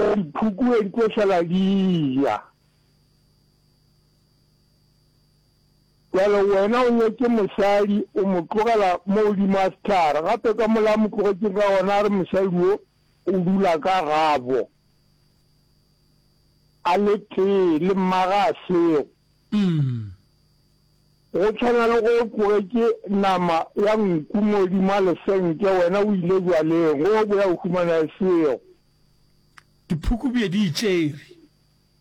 Ka diphuku e di tlo šala di ja. Bjale wena o nyetše mosadi, o mo tlogela mo godimo ga sehlare, gape ka mola a mo tlogetšeng ka gona a re mosadi wo o dula ka gabo a le tee le mmaga a sego. Go tshwana le go o tlogetše nama ya nku mo godimo ga lesenke, wena o ile bjaleng, go o boya o humana e sego. Diphuku bje di e tšere.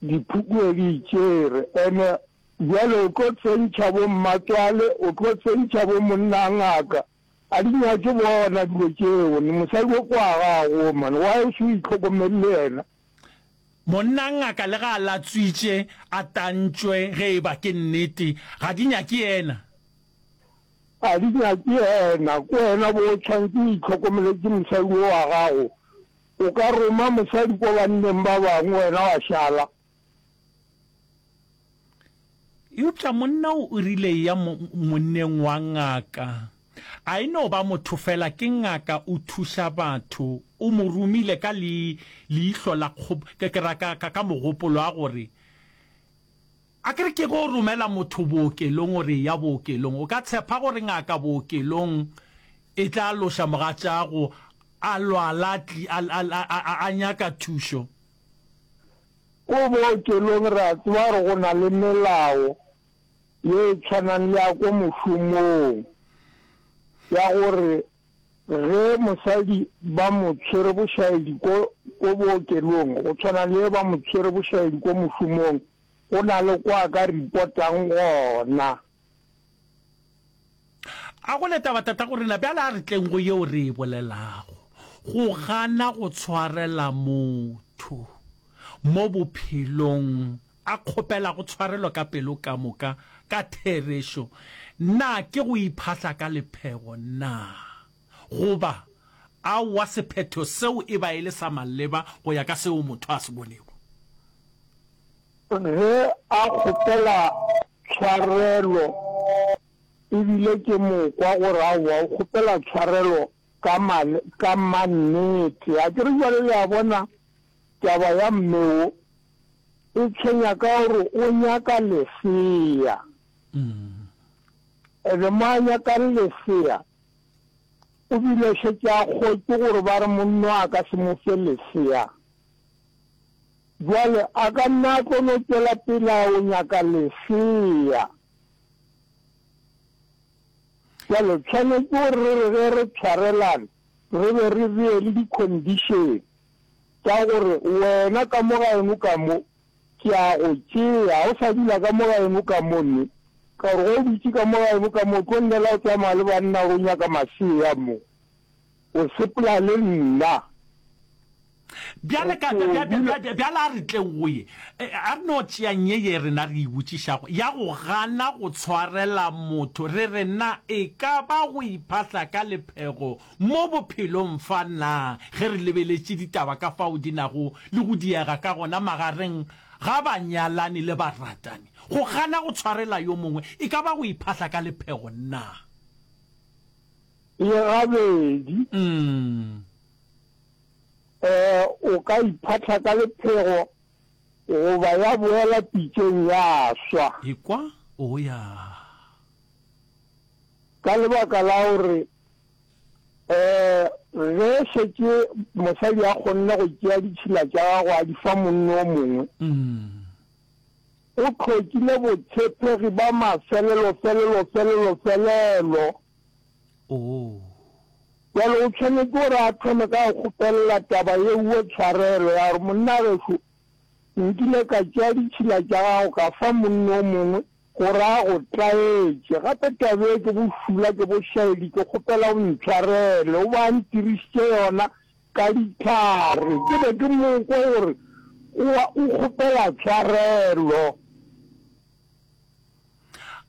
Diphuku bje di e tšere. Ene bjale o tlo tsentšha bo mmatswale, o tlo tsentšha bo monna a ngaka. A di nyake bona dilo tšeo. Ni mosadi o kwa gago o man. Why o se o itlhokomele le yena? Monna a ngaka le ga a latswitše a tantšwe ge e ba ke nnete, ga di nyake yena. A di nyake yena, ke wena bo o tshwanetse o itlhokomeletse mosadi wo wa gago. O ka roma mosadi kwa banneng ba bangwe wena wa šala. Eupša monna o o rile eya monneng wa ngaka. A e no ba motho fela, ke ngaka, o thuša batho. O mo romile ka le, leihlo la kgob, ke, ke ra ka, ka, ka mogopolo a gore, Akere ke go romela motho bookelong gore eya bookelong. O ka tshepa gore ngaka bookelong e tla loša mogatšaago a lwala a nyaka thušo? Ko bookelong re a tseba gore go na le melao ye e tshwanang le ya ko mošomong ya gore ge mosadi ba mo tshwere bošaedi ko bookelong go tshwana le ge ba mo tshwere bošaedi ko mošomong Go na le kwa ka ripotang gona. A go le taba tatago rena, bjale a re tleng go yeo re e bolelago, go gana go tshwarela motho mo bophelong, a kgopelago tshwarelo ka pelo ka moka, ka therešo. Na ke go iphahla ka lephego? Na. Goba, Aowa, sephetho seo e ba e le sa maleba go ya ka seo motho a se bonego. Ge a kgopela tshwarelo e bile ke mo kwa gore aowa, o kgopela tshwarelo ka male, ka mannete. Akere bjale le a bona taba ya mme wo e tshwenya ka gore o nyaka lesea. Ebe mo a nyakang lesea, O bile a šetše a kgotše gore ba re monna a ka se mo fe lesea. Bjale a ka nna a tlo no tšwela pele a yo nyaka lesea. Bjale tshwanetše gore re re ge re tshwarelana re be re bee le di-condition tša gore wena ka mo ga eno ka mo Ke a go tšea, o sa dula ka mo gaeno ka mo, nne, ka gore ge o dutše ka mo gaeno ka mo, o tlo llela go tsamaya le banna gore o nyaka masea mo. O sepela le nna. Bjale, ka, ka, bja, bja, bja, bjale a re tle go ye. E, a re no tšeang ye ye rena re e botšišago, ya go gana go tshwarela motho, re re, Na e ka ba go iphahla ka lephego Mo bophelong fa, na ge re lebeletše ditaba ka fao di nago le go diega ka gona magareng ga banyalani le baratani, go gana go tshwarela yo mongwe e ka ba go iphahla ka lephego na? Ee, gabedi. Ee, o ka iphahla ka lephego goba ya boela pitšeng ya swa. Ekwa o ya. Ka lebaka la gore ge šetše mosadi a kgonne go tšea ditšhila tša gagwe a di fa monno o mongwe, o tlhokile botshepegi ba mafelelo-felelo-felelo-felelo. Bjale o tshwanetse gore a thome ka go kgopelela taba yeo tshwarelo ya gore, Monnagešo, nkile ka tšea ditšhila tša gago ka fa monno o mongwe, Go ra go tlaetše. Gape taba ye ke bo šula, ke bo šaedi, ke kgopela o ntshwarele. O be a ntirišitše yona ka dihlare. Ke be ke mo kwa gore o a, o kgopela tshwarelo.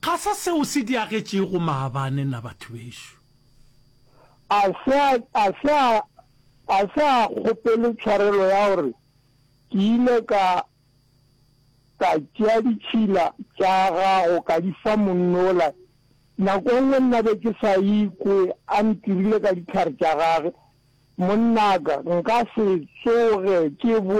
Ga se seo se diagetšego maabane na, batho bešo? A se a, a se a, a se a kgopele tshwarelo ya gore ke ile ka, Ka tšea ditšhila tša gago ka di fa monnola. Nako e nngwe nna be ke sa ikwe a ntirile ka dihlare tša gage. Monnaka, nka se tsoge ke boe